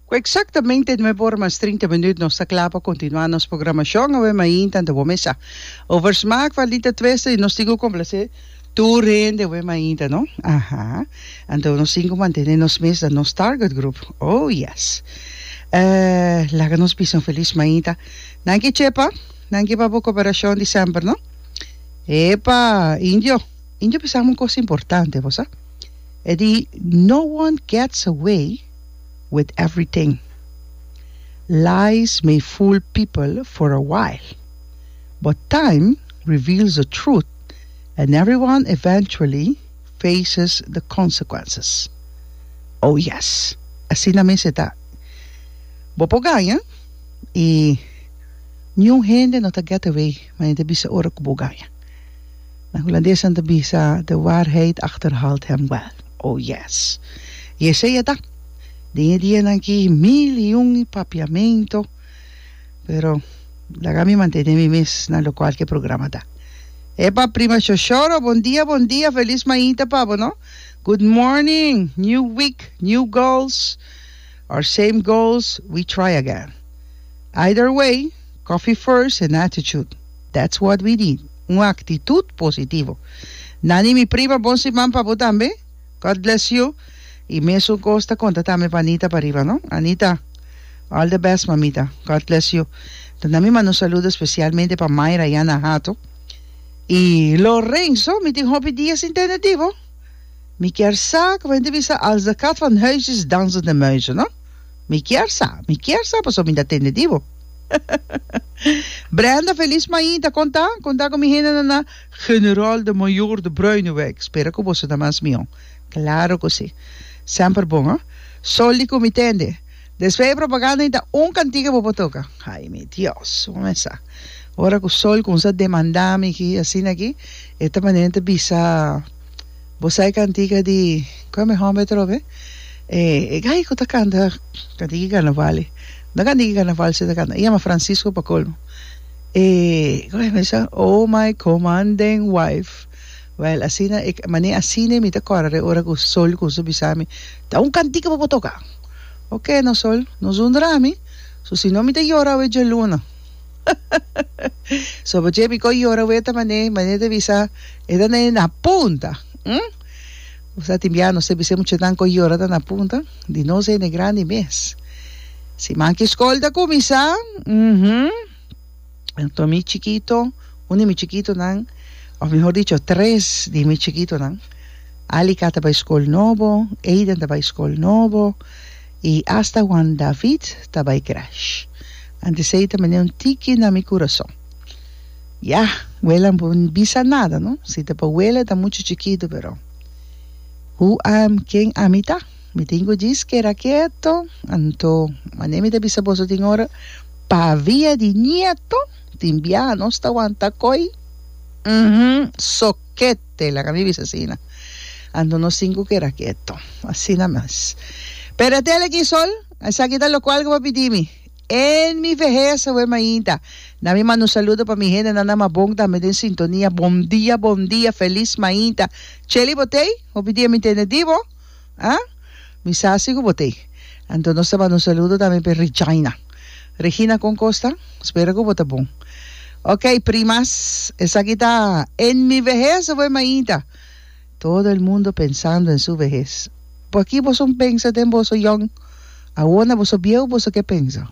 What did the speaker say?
Cu exactamente nuebe ora mas trinta minuut nos ta cla pa continua nos programacion awe mainta anto bo mesa. Over smaak van Lita Twester y nos tin cu complace tur hende awe mainta no. Aha. Anto nos tin cu mantene nos mes na nos target group. Oh yes. Laga nos bisa un feliz mainta. Danki Chepa. Danki pa bo cooperacion di semper no. Epa Indio. Indio bisa mi un cosa importante bosa. E di No one gets away with everything, lies may fool people for a while, but time reveals the truth and everyone eventually faces the consequences. Oh yes, asina mes e ta. Bo por gaña y niun hende no ta get away, manera ta bisa ora cu bo gaña. Na hulandes nan ta bisa, De waarheid achterhaalt hem wel. Oh yes! I esei a ta. Den e dianan aki mil i un papiamento, pero laga mi mantene mi mes na lokual ku e programa ta. Epa prima Shoshoro, bon dia, bon dia, felis mainta pa bo no. Good morning, new week, new goals, or same goals, we try again. Either way, coffee first and attitude. That's what we need, un aktitut positivo. Nani mi prima bon siman pa bo tambe, God bless you y mesun kos ta konta tambe pa Anita pariba no Anita all the best mamita God bless you ta na mi manda un saludo especialmente pa Myra y Ana Hato y Lorenzo mi tin hopi dia sin tende di bo mi kier sa como hende bisa als de kat van huis is dansen de muizen no. Mi kier sa, mi kier sa pasobra mi ta tende di bo. Brenda Feliz Main ta konta, konta ku mi hendenan na General de Mayor de Bruineweg. Spera ku boso ta mas mihó. Klaro ku si. Semper bon, a. Soli ku mi tende. Despues e propaganda i ta un kantiga bo por toka. Ai mi Dios, bo mesa. Ora ku Sol kumsa demandá mi ki asina ki e ta manera mi ta bisa. Bo sa e cantica di Cua mi homber trobe? E e gay cu ta canta cantica di carnaval e no cantica di carnaval si ta canta e yama Francisco pa colmo e guy mi sa oh my comanden wife well asina e mane asina mi ta corda e ora cu Sol cuminsa bisami ta un cantica bo por toca oke no Sol no zundra mi so si no mi ta yora awe djaluna so bo dje mi ko yora weta mane mane ta bisa e ta nene na punta hm bo sa tin bia no se bis'e muchanan ko yora ta na punta di nos hende grandi mes si man ki skol ta kuminsá uhumm anto mi chikito un di mi chikitonan òf mihor dicho tres di mi chikitonan Alica ta bai skol nobo Aiden ta bai skol nobo I asta Juan David ta bai crash. Antes ei ta mende un tiki na mi curason. Ya, wele a no por bisa nada, no? Si ta pa wele ta mucho chikitu, pero who am, ken ami ta? Mi tin ku djis keda keto, anto mane mi ta bisa boso tin ora pa via di nieto? Tin biaha nos ta wanta koi? Uhmm, so ket! Taylor a mi bisa asina. Anto nos sinku keda keto. Asina mes. Pero e tele aki sol, esaki ta lokual ku bo pidi mi. En mi vehez awe mainta, na mi manda un saludo pa mi hendenan na Mabon tambe den sintonia. Bon dia, bon dia, felis mainta. Cheli Botey, hopi dia mi tende di bo. Ha? Mi sa si ku bo t'ei. Anto nos ta manda un saludo tambe p'e Regina. Regina, kon kos ta? Spera ku bo ta bon. Ok, primas, esaki ta En mi vejez of en mainta? Todo el mundo pensando en su vejez. Por aki boso pensa den boso yòn? Awor na boso bieu boso ke pensa?